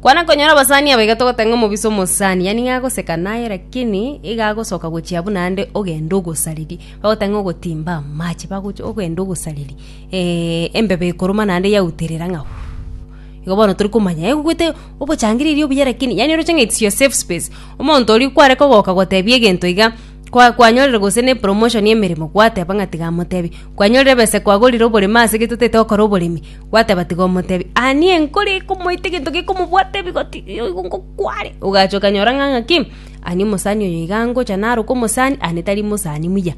Kwana konyora abasani aba iga togotanga omobisa omosani yani iga agoseka naye lakini iga agosoka gochia buna ande ogende ogosariri bagotanga ogotimba amache bagochi ogende ogosariri eh embeba ekoruma naende yauterera ng'a uuh igo bono tori komanya egogwete obochangire erio obuya lakini yani oroche ng'a its your safe space omonto oria kware kogoka gotebia egento iga. Kwa kwanyorire gose ne promotion y'emeremo gwateba ng'a tiga amotebi. Kwanyorire ebesa kwagorire oboremo ase gete totete gokora oboremi gwateba tiga omotebi. Anie nkore ekomoita egento gekomobwata ebigoti oigo ngo kware. Ogacha okanyora ng'a ng'aki anie omosani oyo iga angocha naroka omosani anie tari mosani muya.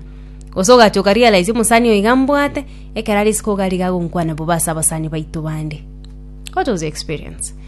Gose ogacha oka realize omosani oyo iga mbwate ekero are isiko iga ariga agonkwana bobe ase abasani baito bande. What was your experience?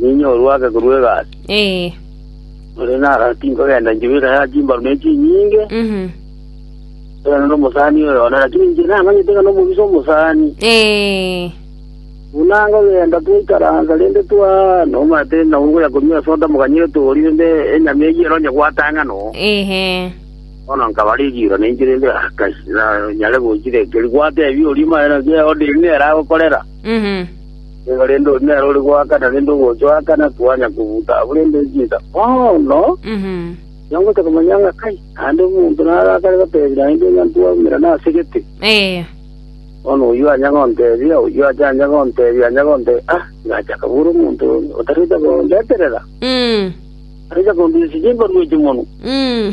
Ninye orwake korwa egasi, Ee. ore nara tinkogenda nchibera ya chimbaru ne chinyinge, Mhm. korende nomosani oyo one, lakini inche namanyete ng'a nomobisa omosani. Ee. Buna nkogenda twaikaransa rende twa nomanyete ng'a ogoya korwa esoda mokanyire tori rende enyama eyio ero onye gwatang'a no. Ehe. Bono nkaba rigiiro ninche rende ah kai, na nyare gochira ekeri. Gwatebia oria maene ng'a eoderi neragokorera. Mhm. Nigo rende onye nere ore goakana rende ogochoakana kwanya kobuta abwo rende echida. Bono Mhm. nongocha komanya ng'a kai naende omonto narakare gotebi naende ng'a ntwaumera nase gete. Eh. Bono oyio anya gontebia, oyio acha anya gontebia, anya gontebia, ah, ngacha kabura omonto onde otarete kondeterera, Mm. tarecha kondisia chimbarwa echi monwe. Mm.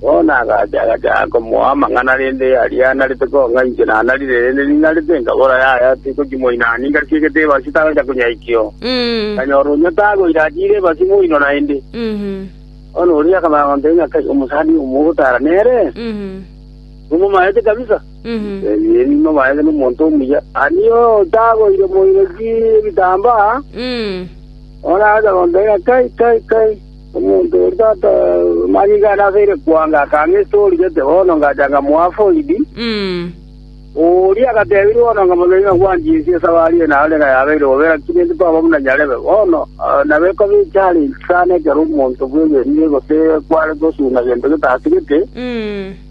Bono agacha agacha komoa amang'ana, rende aria narete kong'a inche nanarire, rende ninarete enkabora yaya tikochimoina, ningarusia egetebe asio tagocha konyaikio. Nkanyora oria tagoire achiire ebasi moino naende. Bono oria akamanya gontebia ng'a kai omosani oyo mogotara nere, nomomaete kabisa. Ee, nimomaete nomonto omuya. Ario tagoire moino ki ebitambaa, bono agacha gontebia ng'a kai kai kai. Omonto oria tata manyinga ane abeire kwanga akang'a ase origete, bono ngacha ngamoa foidi. Oria agatebia bono ng'a mono nigo ngwanchia ense ase abari eye naro nigo yabeire gobera ki nintwe kwaba buna nyarebe. Bono nabo ekoba echallenge sana ekero omonto bw'egenire gose kware gosuna gento getatigete.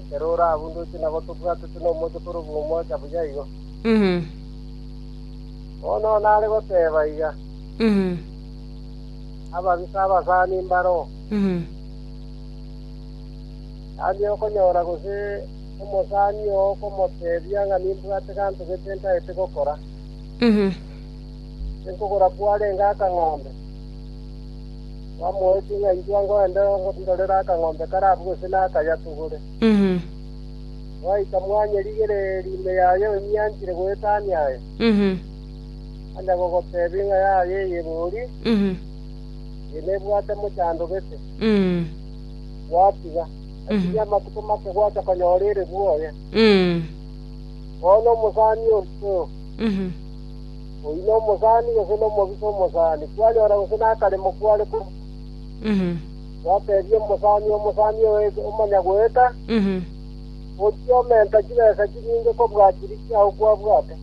ekero orabundoche nabo tobwatete nomochie korokwa omocha buya igo. Mhm. Bono nare goteba iga, Mhm. ababisa abasani mbare oo, Mhm. tari okonyora gose omosani oo okomotebia ng'a nimbwate ganto gete ntaete gokora. Mhm. Tinkogora kwarenge akang'ombe, Bamoetie ng'a intwe ngogende ngondorere akang'ombe kare abwo gose nakayatugore. Mhm. Gwaika mwanyerigereria ime yaye onyianchire goetania aye, Mhm. anya gogotebia ing'a yaye eyebori, Mhm. eye nebwate mochando gete, Mhm. gwatiga. Lakini amatuko make gwacha konyora ere bwoye. Mhm. Bono omosani oito, Mhm. Oyio nomosani gose nomobisa omosani, kwanyora gose nakaremo kware korua? Gwateebia omosani, Omosani oye, omanya goeta, gochia omenta chibesa chinyinge kobua chiria chiao kwabwate.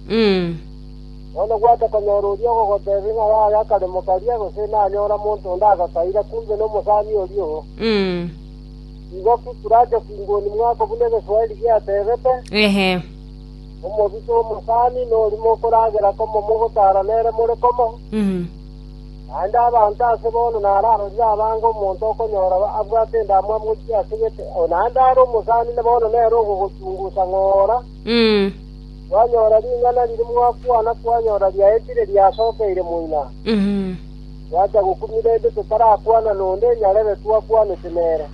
Bono gwata konyora oria ogogoteebia ng'a yaya akaremo karia, gose nanyora monto onde agakaira, kumbe nomosani oria oo. Igo ki kurache kinguni mwako buna Egeswaeri giateebete? Omobisa omosani norimo okoragera komo mogotaara nere more komo, naende abanto ase bono nararorire abange omonto okonyora abwate endamwamu gochia ase gete, naende are omosani bono nere ogogochungusa ng'ora, kwanyora ring'ana riria mwakwana kwanyora riaetire riasokeire moina, twacha gokumia rende totarakwana nonde nyarere twakwanete nere.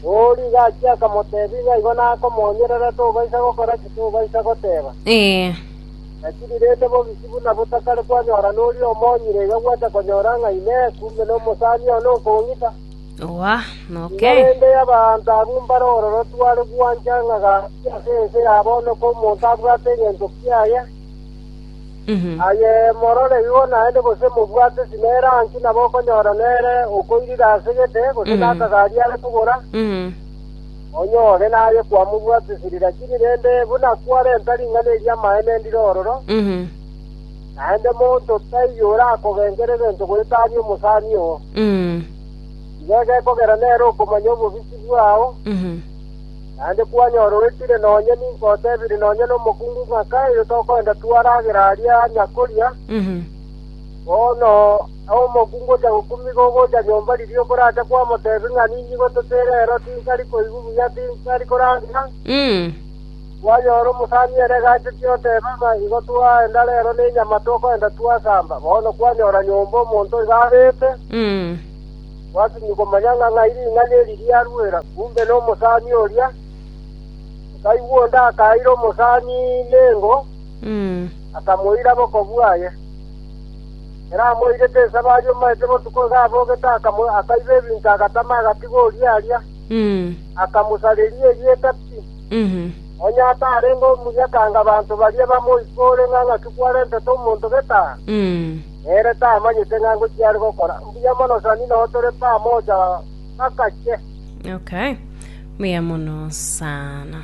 Oo rigo achia akamotebia, Ng'a igo nakomonyerera, tobaisa gokora ki? Tobaisa goteba, Ee. Naki rirente bobisi buna botakare kwanyora noria omonyire, iga gwata konyora ng'a Inee! Kumbe nomosani one okong'ita? Oa, noke. Iga rende y'abaanto abwo mbare ororotu are gwancha ng'a gaki ase ense ya bono, komonto abwate egento kiaye. Aye morore igo naende gose mobwate esime erangi nabo okonyora nere okoirire ase gete gose Mhm. nakagari are kogora, onyore naye kwamobwatesiri, lakini rende buna kwarenta ring'ana eri amaene ndire ororo, naende monto taiyo orakogenkera egento goeta aria omosani oo. Igo egekogera nere okomanya obobisi bwao, Naende kwanyorogekire nonya ninkotebire nonya nomokungu ng'a kaire tokoenda twaragera aria nyakoria, bono omokungu ocha gokumiga ogocha nyomba riria okoracha kwamotebi ng'a ninyigwe totere ero tinkari koigwa buya tinkari koragera, kwanyora omosani ere egacheti oteba ng'a igo twaenda rero nenyama tokoenda twasamba, bono kwanyora nyomba omonto iga abete. Gwatunyia komanya ng'a ng'ai ring'ana eri riaruera, kumbe nomosani oria. Motaibwa onde akaira omosani nengo, akamoira boko bwaye. Ekero amoirete ensabo aria omanyete botuko iga abogete akaiba ebinto agatama agatiga oria aria, akamosareria erieta pi. Onye atarenge omuya kanga abanto baria bamoikore ng'a ng'aki kwarentete omonto gete aa. Nere tamanyete ng'a ngochia are gokora. Mbuya mono Sanino tore pamoja gakache. Okay. Mbuya mono sana.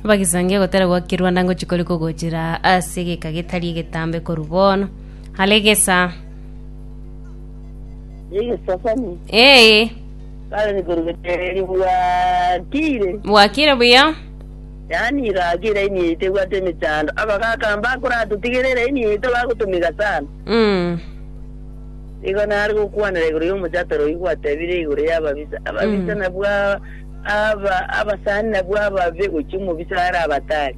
bagisangia gotera gwaki rwanda ngochi kori kogochira ase egeka getari egetambe koru bono hale gesa Yeye sasani. ee Sasa nikurugetere bwakire. bwakire buya Yaani igaaka eiraini yaito ebwate emechando, abagaaka mbakoratotigere eiraini yaito bagotomeka sana. Nigo nare gokwanera igoro y'omochato royio gwatebire igoro y'ababisa, ababisa nabwo a- aba- abasani nabwo ababe gochia omobisa are abatari.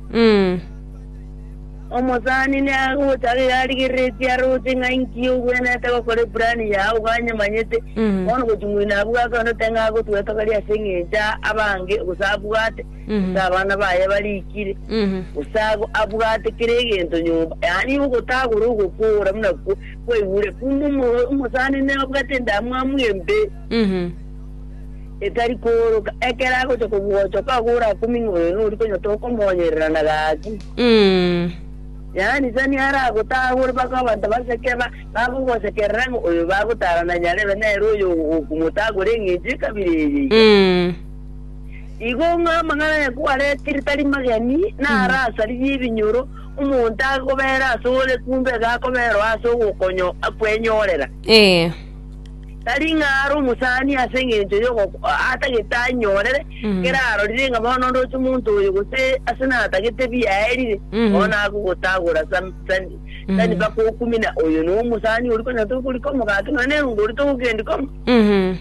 Omosani nagochaka iga arigereretie aroche ng'a inki ogwenerete gokora epurani yago ganyemanyete, bono gochia ng'oino abwate onde oteba ng'a agotwetogeria ase eng'encho abange gose abwate gose abana baye barikire, gose abwate kera egento nyomba, yaani ogotagora ogokoora buna kwaigure. Kumbe omosani nabwate endamwamu embe etari kooroka, ekero agocha kobwochoka agore akoming'a oyo nori konyota okomonyerera na gaki. Yaani sani aragotagore mpaka abanto baseke bagogosekerera ng'a oyo bagotara na nyarebe nere oyo okomotagora eng'encho ekabire eye iga. Igo ng'a amang'ana aye kwaretirie tari mageni, na are asaririe ebinyoro, omonto agobeera ase ore kumbe iga akobeerwa ase ogokonyo kwenyorera. Ee. Tari ng'a are omosani ase engencho y'ogo atagete anyorere, Mhm. kera arorire ng'a bono ndoche omonto oyo gose ase natagete biaerire, Mhm. bono agogotagora sam- sani Mhm. sani mpaka okumina oyo nomosani oria konya tokorikoma gaki nonya nengo oria togokendi koma. Mhm.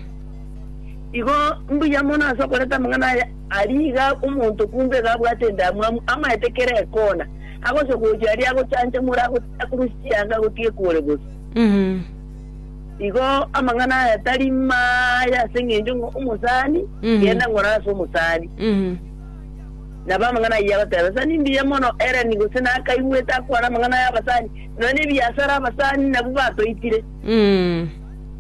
Igo mbuya mono ase okoreta amang'ana aya aria iga omonto kumbe iga abwate endamwamu amaete kera ekona, agocha gochia aria agochanchomora ago- akorwe chianga agotige kore bosa. Mhm. Igo amang'ana aya tari maya ase eng'encho ng'a omosani Mhm. genda ng'ora ase omosani. Mhm. Nabo amang'ana ayio abateba, sa nimbuya mono Eleni gose nakaigwete akwana amang'ana ya abasani, nonya nebiasara abasani nabwo batoitire. Mhm.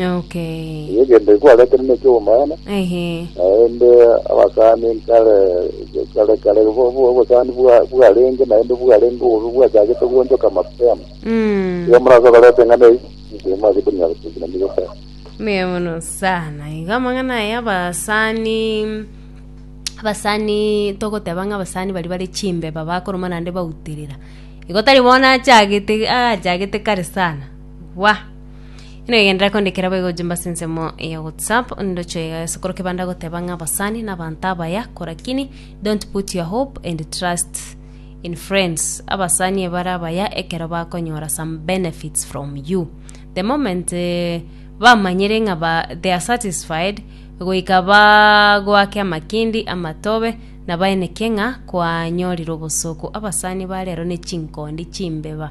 Okay. Eye egento ekwarete ne eki'obomaene, Ehe. naende abasani nkare kare kare bo- bo- obosani bwa- bwarenge naende bwarenge obobe bwachagete goonchoka mapema Mm. igo morase koreta eng'ana eyi inche mwase konyara kogina nigo kare Mbuya mono sana iga amang'ana aya abasani abasani togoteba ng'a abasani baria bare chimbeba bakoroma naende bauterera igo tari bono achagete achagete kare sana bwa Negenderera kondikera boigo gochia mbase ensemo ya WhatsApp ndocho iga ase korokio banda goteba ng'a abasani na abanto abaya korakini don't put your hope and trust in friends abasani ebara abaya ekero bakonyora some benefits from you the moment eh, bamanyire ng'a ba, they are satisfied goika bagoake amakindi amatobe na baeneke ng'a kwanyorire obosooku abasani ba rero ne chinkondi chimbeba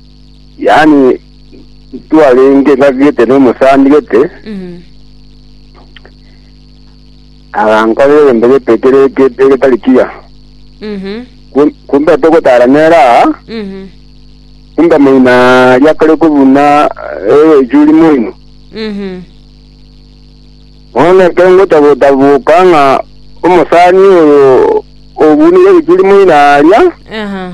Yaani ntwarenge ngaki gete n'omosani gete, Mm. agankorera egento gete kere gete getari kiya. Mhm. Kum- Kumbe togotara nere aa, Mhm. kumbe moino aria kare kobuna echuri moino. Mhm. Bono ekero ngocha gotaboka ng'a omosani oyo obunire echuri moino aria, Aha.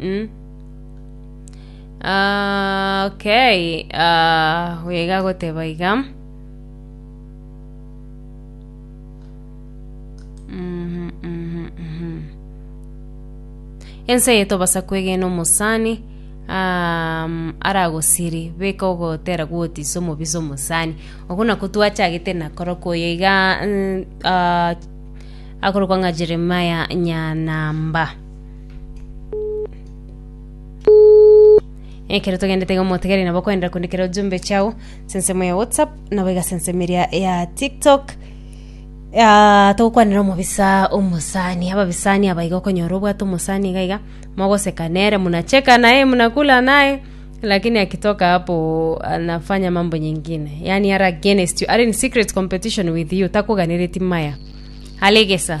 Mm. Ah, okay. Ah, wega goteba iga. Mhm, mhm, mhm. ense yetobasa kwegena omosani um, aragosiri beka ogotera gwotiisa omobisa omosani ogo nako twachagete nakoroka oyo iga mm, ah, akorokwa ng'a jeremaya nyanamba ekero togendete iga motegereri nabo kwenda kundikera ujumbe chao sensemo ya whatsapp nabo iga sensemo eria ya tiktok Ah, togokwanera omobisa omosani ababisani aba iga okonyora obwate omosani iga iga mogoseka nere munacheka naye munakula naye lakini akitoka hapo anafanya mambo nyingine yani are against you are in secret competition with you takuganereti maya alegesa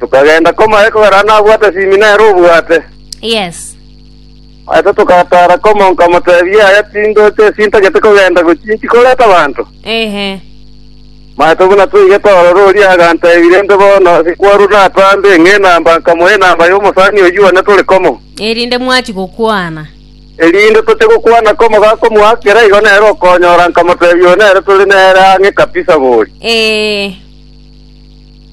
Tokagenda komaye kogera nabwate simi nere obwate. Yes. Aito togataara komo nkamotebia yaya tindoche esintagete kogenda gochia inki koreta abanto. Ehe. Maete buna toige torore oria agantebi rende bono sikwarwa natambe ng'a enamba nkamoa enamba y'omosani oyio one tore komo. Erinde mwachi gokwana. Erinde toche gokwana komo gakomoakera igo nere okonyora nkamotebia oyo nere tore nere ang'e kabisa bori. Ee.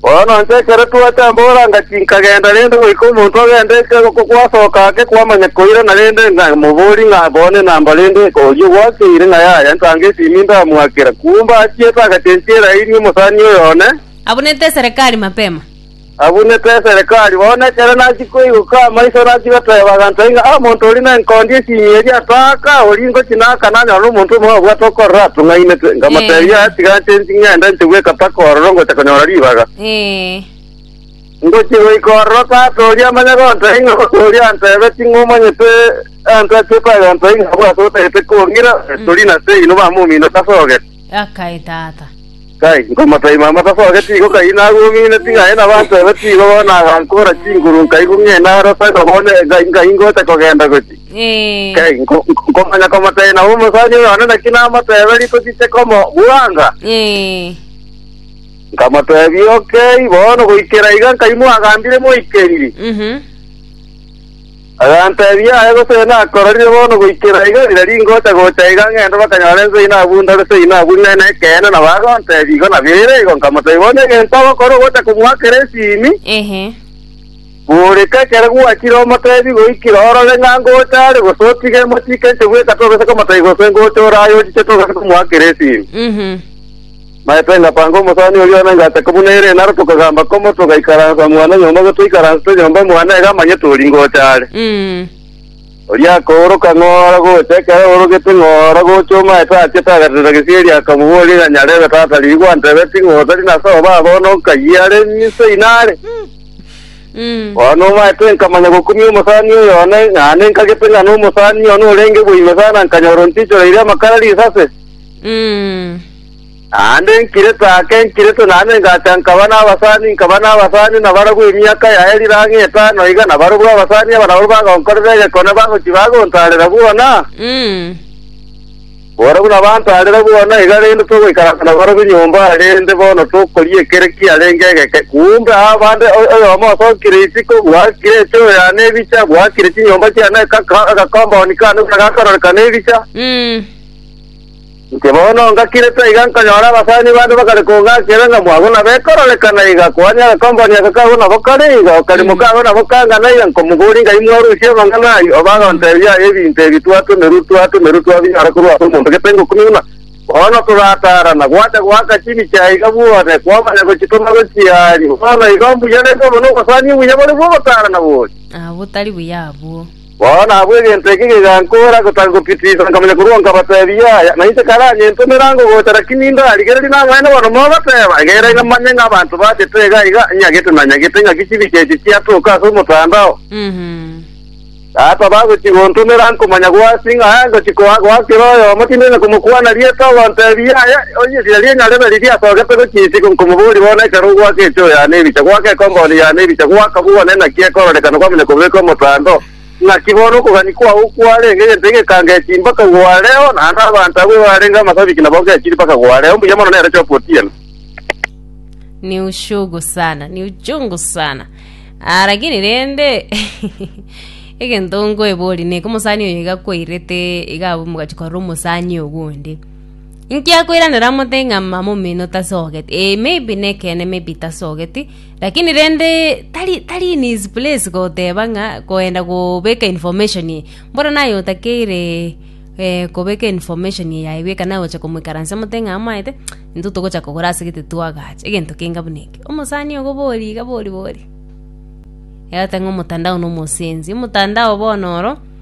Bono inche ekero twacha mboranga tinkagenda rende goika omonto agende gwasoka ake kwamanya koira na rende ng'a moborie ng'a bone namba rende oyio gwakeire ng'a yaya ntange esimi ndamoakera. Kumbe achiete agacha enchera eri omosani oyo one, Abunete eserekari mapema. abunete eserekari. Bono ekero nachia Nkoigoka amaiso nachiga toya bagantoe ng'a omonto oria nenkondi esiimi eria atoaka oria ngochi naaka nanyora nomonto omobe obwate okorora atung'ainete. Nkamotebia, Ee. tiga nche nchi ng'ende nche bweka paka ororo ngocha konyora ribaga. Ee. Ngochi goika ororo tata oria amanye gontoe ng'a omonto oria antebe ting'o omanyete anto achiete agantoe ng'a abwate otagete kong'ira, Tori na Sei nobamominete ase ogete. Akae tata. Kai, nkomotaima amataso ake tigo kai nagong'ina ting'ae nabaanto ebe tigo bono agankora chinguru nkai gong'ina aro taiba bono nkai nkai ngoeta kogenda gochi. Eh. Kai, nko- nko- nkomanya komotaina omosani oyo one naki namotebe riko chiche komo bwanga. Eh. Nkamotebi okay bono goikera iga nkai mwagambire moikeriri. Mhm. Aganteebia, Aye gose nakororire bono goikera iga riria ringocha gocha iga ng'ende bakanyore inse ino abundore se ino abunire nekeene nabo agonteebia igo nabo ere igo nkamotebia bono egento ogokora ogocha komoakera esimi Ehe. Boreka ekero gwachire omotebi goikira orore ng'a ngocha are gose otige emotike inche bweka togesa komotebia gose ngocha ore aye ochiche togesa komoakera esimi. Mhm. Maete ngapanga omosani oria one ngataka buna ere, naro tokagamba komo togaikaransa mwana nyomba gose toikaransete nyomba mwane iga amanye tori ngocha are. Mm. Oria akooroka ng'ora gocha, ekero aorogete ng'ora gocha omaete aachete agaterera gesieri akamoboria ng'a nyarebe tata riria gwantebeti ting'ocha rina ase obaa bono nkayie are mise inare. Mm. Bono omaete nkamanya gokumia omosani oyo one, ng'a ninkagete ng'a nomosani one orenge bwa ime sana nkanyora ontichoreire amakara risase. Mm. Naende enkireto ake enkireto naende engacha nkaba nabasani nkaba nabasani nabarabwo emiaka yaye rire ang'e etano iga nabarobwo abasani aba nabwo bagonkorera egekone bagochia bagontarera bwona, borabwo nabantarera bwona iga rende togoikaransa nabarobwo nyomba rende bono tokoria ekere kiarenge egeke kumbe aa bande o- oyomo osokire isiko bwakire echoo yane ebicha bwakire chinyomba chiane aka- aka- agakomboni kane buna gakororekana ebicha Inche bono ngakire taiga nkanyora abasani bande bagare kong'akera ng'a mwabo nabo ekororekana iga, koania agakombe oria aka kago nabo kare iga, okarimo kago nabo kangana iga, nkomogori ng'ai mwarusie amang'ana ayio, oba agontebia aye ebinto ebi twatomerwe twatomerwe twabinyora korwa ase omonto gete ngokumi buna bono torataarana, gwacha goaka chibi chiaiga bwone, kwamanya gochitoma gochiaria, bono igo mbuya rende omonwa obosani obuya bore bw'ogotaarana boria. Abwo tari buya abwo. Bono abwo egento eke gegankoora gotaka gopitiisa, nkamanya korwa nkabateebia yaya, na inche karanye ntomere ango gocha, lakini indarigererie namanyete bono mogoteeba, egera iga manye ng'a abanto bachete iga iga nyagete na nyagete ng'a ki chibi chiaito chiatoka ase omotandao. Tata bagochia gontomera nkomanya gwasi ng'a aya ngochia koa- goakera oyomo, tindiri na komokwana rieta, ogonteebia yaya, Onye esira ri'eng'a ribe riria ase ogete gochia isiko, nkomoboria, Bono ekero ogoaka enchoo yane ebicha, goaka ekompauni yane ebicha, goaka buna ne naki ekororekana kwamanya kobeka omotando, naki bono okogania kwao kwarenge egento egekanga echii mpaka gwareo, naende abanto abwo ebarenge amasabiki nabo ngechiri mpaka gwareo. Mbuya mono nere Chopu Otieno. ni uchungu sana ni uchungu sana ah, lakini rende egento nkoebori neke omosani oyo iga kwairete iga abwo mogachi korora omosani ogundi Inkiakoiranera mote ng'a mama omino tasogeti eh, maybe nekeene maybe tasogeti lakini rende tari tari in his place goteba ng'a koenda gobeka information eye mboro naye otakeire eh, kobeka information eye yaye bweka naye ogocha komoikaransa mote ng'a amaete intwe togocha kogora asegete twagacha egento keinga buna eke omosani ogo bori iga bori bori egoteba ng'a omotandao na omosensi omotandao bono oro.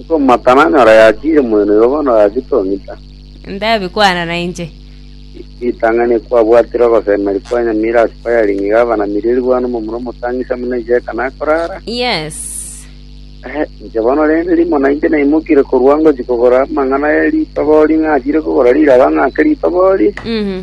Nkomata nanyore yachiire moeno igo bono oyachia tong'ita. Ndabie kwana nainche. Ritang'ani ekwabwatire ogosemeria kwa enyamira ase firing iga abanamiri erigwani omomura omotang'isi amo nainche eka nakorara. Yes. Ehe, inche bono rende rimo nainche naimokire korwa ngochia kogora amang'ana e ritobori ng'achiire kogora riraba ng'ake ritobori. Mhm.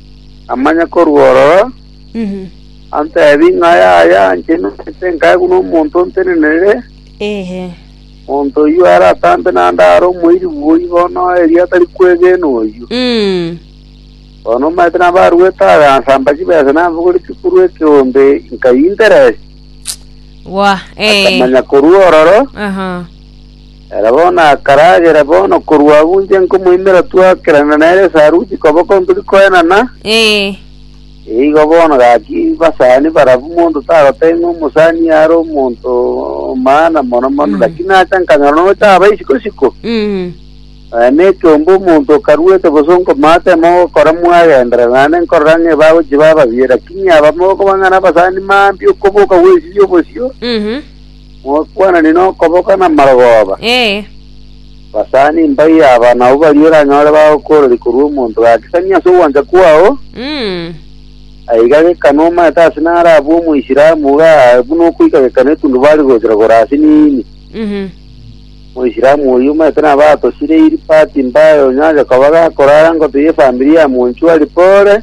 Namanye korwa ororo, antebi ng'a yaya inche nimanyete nkae buna omonto ontenenere, Ehe. monto oyio aratambe naende are omoiri bwoi bono erio atari kwegena oyio. Mm. Bono omanyete nabaruete abe ansamba chibesa nabogori chikuru ekeombe nkai interest. Wa. Eh. Akamanya korwa ororo Aha. Ere bono akaragera bono korwa agwo inche nkomoimera twakerana nere esaruti koboko tori koenana, Ee. igo bono gaki basani barabwo monto tagoteba ng'a omosani are omonto o maana mono mono, Mm. lakini nacha nkanyora nocha aba isiko siko, Mm. eh, na ekiombe omonto okaruete gose onkomata emo ogokora mwagendera, naende nkorora ng'a ebagochi ba ababiya, lakini abamo okobang'ana abasani maambia okoboka gwesibia obosio, Mhm. Mokwanane nokoboka namarogoba, Ee, basani mbai aba nabwo baria oranyore bagokoororia korwa omonto gaakisani ase ogwancha kwao, mm, aiga gekano omanyete ase nare abwo Omoisilamu iga aa buna okoika gekano etundubari gochera kore ase niini. mhm, Moisilamu oyio omanyete nabo atosire iri pati mbaye onyache koba gakorara ngoto y'efamiri ya monchwari pore,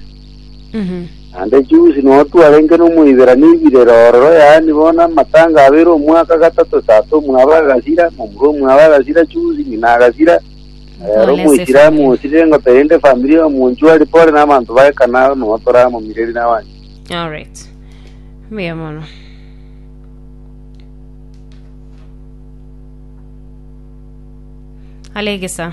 Naende Jusi notwe arenge n'Omoiberania oibirere ororo, yaani bono amatanga abeire omwaka gatato esase omwabo agasira, momura omwabo agasira, Jusi ng'ina agasira, na rero Omoisilamu osirire ngota erinde efamiri y'omonchu aria pore nabanto ba ekana aro nonya toramomireri nabanchu. Alright. Mbuya mono. Alegesa.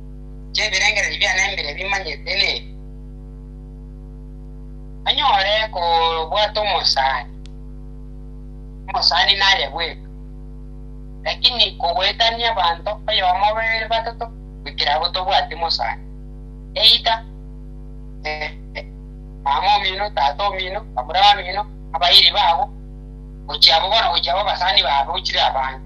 chi'ebirengererio biane mbire bimanyete nebi, banyore kobwata omosani, omosani naye bweka, lakini kogoetania abanto oyomo, babere, batato, goikera abwo tobwati mosani, either mama omino, tata omino, bamura bamino, abairi babo, gochia abwo bono gochia abwo abasani baabo chire abande.